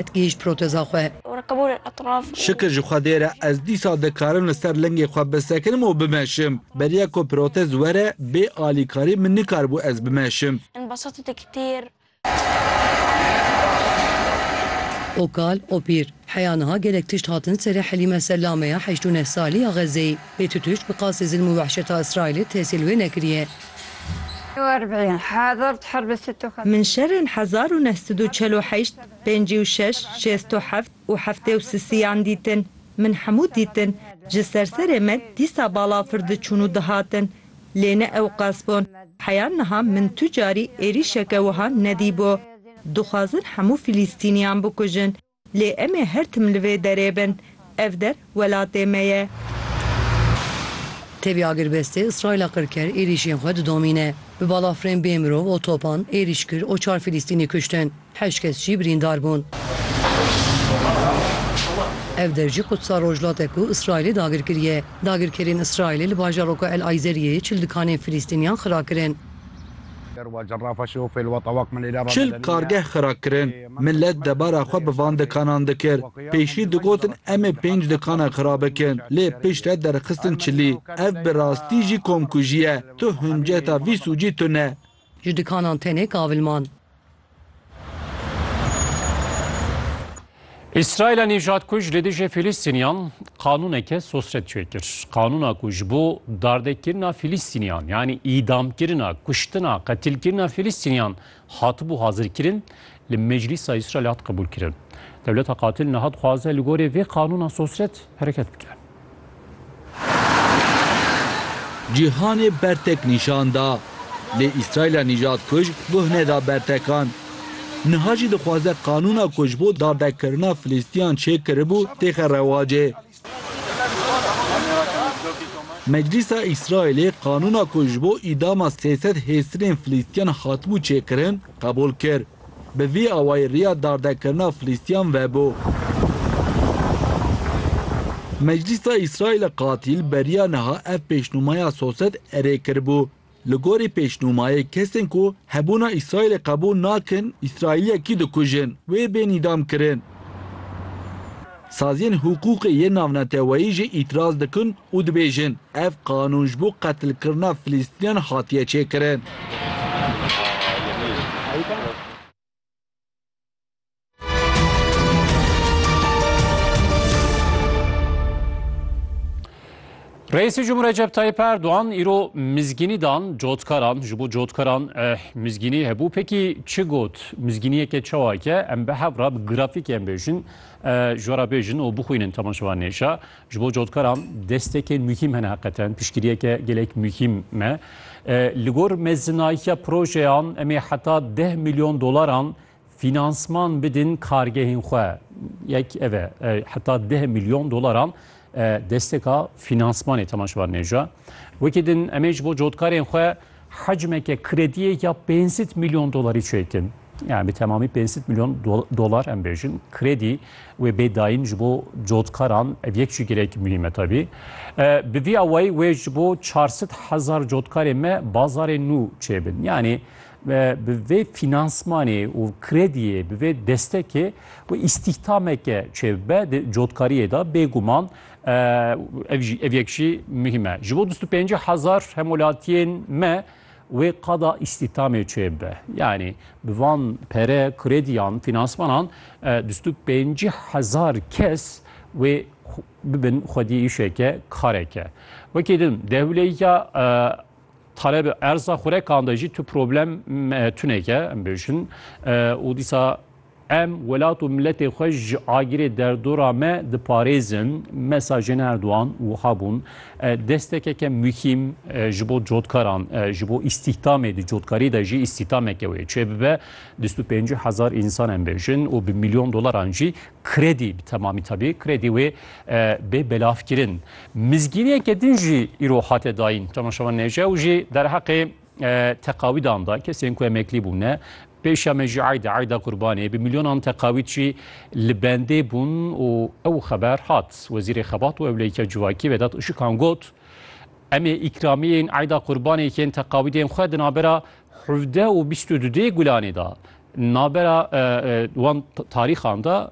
Digihîşt proteza xwe. Şikir ji Xwedê re ez dîsa dikarim li ser lingê xwe bisekinim û bimeşim. Beriya ku protez were bê alîkarî min nikaribû ez bimeşim. Okal, Opîr, heya niha gelek tişt hatin serê Helîme Sellame ya heşt û neh salî ya Xezzeyê. Lê tu tişt bi qasî zilm û wehşeta Îsraîlê tehsîl wê nekiriye. Min şerên hezar û neh sed û çel û heşt Pêncî û şeş, şêst û heft û heftê û sisiyan dîtin. Min hemû dîtin. Ji ser serê me dîsa balafir diçûn û dihatin. Lê ne ewqas bûn. Heya niha min tu carî êrîşeke wiha nedîbû. Dixwazin hemû Filîstîniyan bikujin. Lê em ê her tim li vê derê bin. Ev der welatê me ye. Tevî agirbestê Îsraîla qirker êrîşên xwe didomîne. Bi balafirên bê mirov û topan êrîş kir û çar Filîstînî kuştin, heşt kes jî birîndar bûn. Ev der jî Qudsa Rojhilat e ku Îsraîlê dagir kiriye. Dagirkerên Îsraîlê li bajaroka El Ayzeriyeyê çil dikanên Filîstîniyan xira kirin. Çil kargeh xira kirin. Milet debara xwe bi van dikanan dikir. Pêşî digotin em ê pênc dikana xira bikin lê pişt re derxistin çilî. Ev bi rastî jî komkujî ye. Tu hinceta vî sûcî tune. Ji dikanan tenê kavilman. Îsraîla nîjadkuj li dijî Fîlîstîniyan qanûneke sosret çê kir. Qanûna ku ji bo dardekirina Fîlîstîniyan yanî îdamkirina, kuştina, qetilkirina Fîlîstîniyan Hatibû hazirkirin, li Meclîsa Îsraîlê hat qebûlkirin. Dewleta qatil niha dixwaze li gorî vê qanûna sosret hereket bike. Cîhanê bertek nîşan da. Lê Îsraîla nîjadkuj guh neda bertekan. Niha jî dixwaze qanûna ku ji bo dardekirina Filîstîyan çêkiribû têxe rewacê. Meclîsa Îsraîlê qanûna ku ji bo îdama sê sed hêstirên Filîstiyan hatibû çêkirin, qebûl kir. Bi vî awayî riya dardekirina Filîstiyan vebû. Meclîsa Îsraîlê qatîl beriya niha ev pêşnûmaya sosed erê kiribû Li gorî pêşnûmayê kesên ku hebûna Îsraîlê qebûl nakin Îsraîliyekî dikujin, wê bên îdam kirin. Saziyên hiqûqê yên navneteweyî jî îtiraz dikin û dibêjin, ev qanûn ji bo qetilkirina Filistîniyan hatiye çêkirin. Reisi Cumhur Recep Tayyip Erdoğan iro mizgini dan cotkaran ji bo cotkaran eh, mizgini hebû pekî çi got mizginiyeke çawake em bi hevra bi grafîkê em bêjin eh, ji wara bêjin û bixwînin temaşevan nêşa ji bo cotkaran destekên muhîm hene heqeten piştgiriyeke gelek muhîm me eh, li gor mezinahiya projeyan em ê heta deh milyon dolaran Finansman bidin kargehên xwe. Yek ev e. Heta deh milyon dolaran desteka finansmanê Temaş Bar Nêja. Wekî din emê ji bo cotkarên xwe hecmeke krediyê ya pêncsit milyon dolarî çêkin. Yani bi temamî pêncsit milyon dolar em bêjin. Kredî wê bê dayîn ji bo cotkaran ev yek jî girek muhîm e tabî. Bi vî awayî wê ji bo çarsit hezar cotkarê me bazarê nû çêbin. Yani Ve bi vê fînansmanê û krediyê, bi vê destekê wê îstîhdameke çêbibe di cotkariyê de bêguman ev jî ev yek jî muhîm e. Ji bo bîst û pêncî hezar hemwelatiyên me wê qada îstîhdamê çêbibe. Yanî bi van pere, krediyan, fînansmanan bîst û pêncî hezar kes wê bibin xwedî îşeke, kareke. Wekî din dewleya Taleb erza xurekan de jî tu problem tuneke em bêjin û dîsa em welat û miletê xwe ji agirê derdora me diparêzin mesajên Erdogan wiha bûn destekeke muhîm ji bo cotkaran ji bo îstîhdamê di cotkarî de jî îstîhdameke wê çêbibe 25 hezar însan em bêjin û bi milyon dolaran jî Kredî bi temamî tevî kredî wê bê belavkirin. Mizgîniyeke din jî îro hate dayîn Temaşevan Nêce û jî derheqê teqawîdan da kesên ku emeklî bûne pêşa me jî ayda ayda qurbanê bi milyonan teqawîd jî li bendê bûn û ew xeber hat Wezîrê Xebat û Ewleyîka Civakî Vedat Işikan got Em ê îkramiyên ayda qurbanê yên teqawîdên xwe di navbera hevdeh û bîst û du dê Gulanê de navbera wan tarîxan de